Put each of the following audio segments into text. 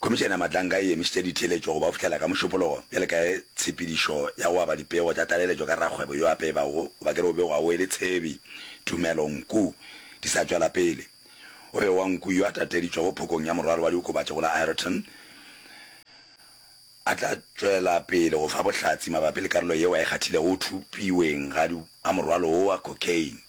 Khomišene ya Mahlanka e emišitše ditheeletšo go ba fihlela ka Mošupologo bjale ka ge tshepedišo ya go aba dipego tša tlaleletšo ka rakgwebo yo a pebago goba ke re o begwago e le Tshebi Tumelo Nku di sa tšwela pele. O be wa Nku yo a tateditšwego phokong ya morwalo wa diokobatši go la Ireton a tla tšwela pele go fa bohlatsi mabapi le karolo yeo a e kgathilego go thupiweng ga morwalo wo wa cocaine.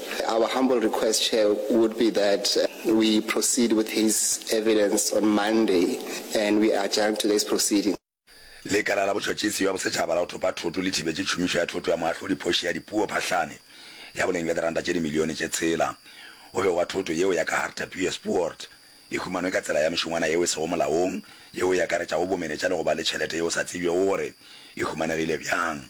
Our humble request, Chair, would be that we proceed with his evidence on Monday and we adjourn today's proceeding. Lekala la Botšhotšhisi bja Bosetšhaba la go Thopa Thoto le thibetše tšhomišo ya thoto ya moahlodi phoši ya dipuo phahlane ya boleng bja diranta tše dimilione tše tshela go begwa thoto yeo ya ka Hartebeespoort e humanwe ka tsela ya mešongwana yeo e sego molaong, yeo e akaretšago bomenetša le go ba le tšhelete yeo sa tsebjego gore e humanegile bjang.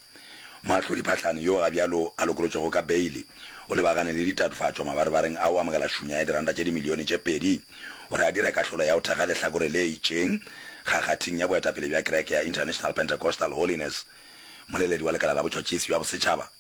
Moahlodi Phahlane, yoo gabjalo a lokolotšwego ka beile, o lebagane le ditatofatšo mabarebareng a go amogela šunya ya diranta tše dimilione tše pedi gore a dire kahlolo ya go thekga lehlakore le itšeng kgakgathing ya boetapele bja kereke ya International Pentecostal Holiness. Moleledi wa Lekala la Botšhotšhisi bja Bosetšhaba,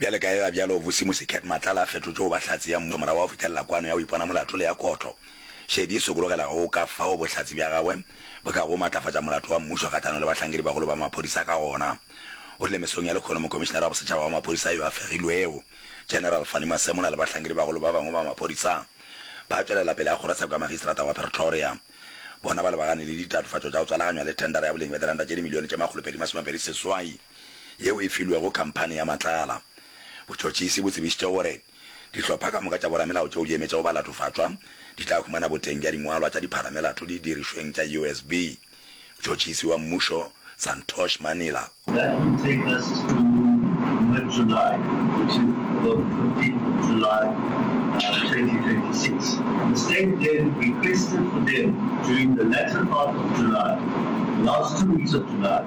Bjale ka eba bjalo, Bossi Mosekhet Matlala a fetotšwe go ba Hlatse ya Mmušo morago ga go fetelela kwano ya go ipona molato le ya Kotlo. Shedi e sokologela go go ka fao bohlatse bja gagwe bo kago go matlafatša molato wa Mmušo kgahlano le bahlankedi-bagolo ba maphodisa ka gona. O rile mesong ya lekgono Mokomišinara wa Bosetšhaba wa Maphodisa yo a fegilwego, General Fannie Masemola le bahlankedi-bagolo ba bangwe ba maphodisa ba tšwelela pele ga kgorotsheko ya Magistrata wa Pretoria bona ba lebagane le ditatofatšo tša go tswalaganywa le thendara ya boleng bja diranta tše dimilione tše makgolopedi masomepedi seswai. yeo e filwego khamphani ya matlala. Botšhotšhisi bo tsebišitše gore dihlopha ka moka tša boramelao tšeo di emetšego balatofatšwa di tla humana boteng bja dingwalwa tša dipharamelato didirišweng tša USB. Mtšhotšhisi wa mmušo Santosh Manila, That will take us to mid July, which is the fifteenth of July, twenty twenty six. The state then requested for them during the latter part of July, last two weeks of July,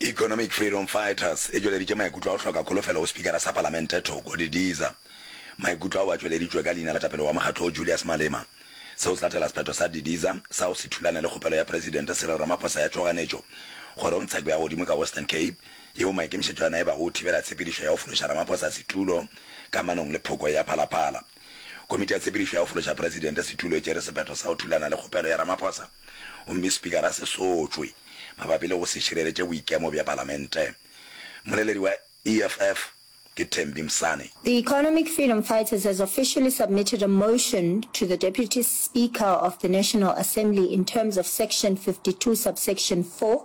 Economic Freedom Fighters e tšweleditše maikutlo a go hloka kholofelo go Spikara sa Palamente Thoko Didiza. Maikutlo ao a tšweleditšwe ka leina la tapelo wa mokgatlo wo Julius Malema. Seo se latela sephetho sa Didiza sa go se thulane le kgopelo ya Presidente Cyril Ramaphosa ya tšhoganetšo kgorong tsheko ya godimo ka Western Cape yeo maikemišetšo a yona e bago go thibela tshepedišo ya go fološa Ramaphosa setulo kamanong le phoko ya Phalaphala. Komiti ya Tshepedišo ya go Fološa Presidente Setulo e tšere sephetho sa go thulana le kgopelo ya Ramaphosa. gomme Spikara se sotšwe mabapi le go se šireletše boikemo bja Palamente. Mmoleledi wa EFF ke Thembi Msane. The Economic Freedom Fighters has officially submitted a motion to the Deputy Speaker of the National Assembly in terms of Section 52, Subsection 4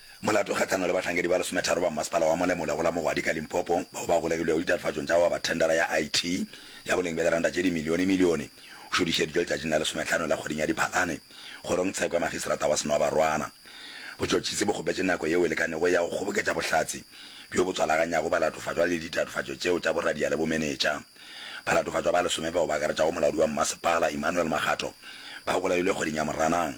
Molato kgahlano le bahlankedi ba lesometharo ba mmasepala wa Molemola go la Mogwadi ka Limpopo bao ba golegilwego ditatofatšong tša go aba thendara ya IT ya boleng bja diranta tše dimilionemilione o šodišeditšwe letšatšing la lesometlhano la kgweding ya Diphalane kgorong tsheko ya magisrata wa Senoabarwana. Botšotšhisi bo kgopetše nako yeo e lekanego ya go kgoboketša bohlatse bjo bo tswalaganyago balatofatšwa le ditatofatšo tšeo tša boradia le bomenetša. Balatofatšwa ba lesome bao ba akaretšago molaodi wa mmasepala, Emmanuel Makgatho, ba golegilwe kgweding ya Moranang.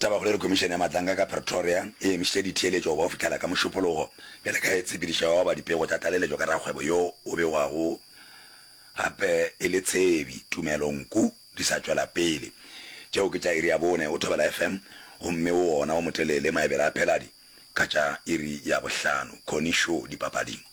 Tabakgolo e re Komišene ya Matlanka ka Pretoria e emišitše ditheeletšo go fihlela ka Mošupulogo bjale ka ge e tshepidiša yo a oba dipego tša tlaleletšo ka rakgwebo yo o begwago gape e le Tshebi Tumelo Nku di sa tšwela pele. Tšeo ke tša iri ya bone go Thobela FM gomme wo wona wo motelele maebele a phela di ka tša iri ya bohlano. Connie Shaw, Dipapading.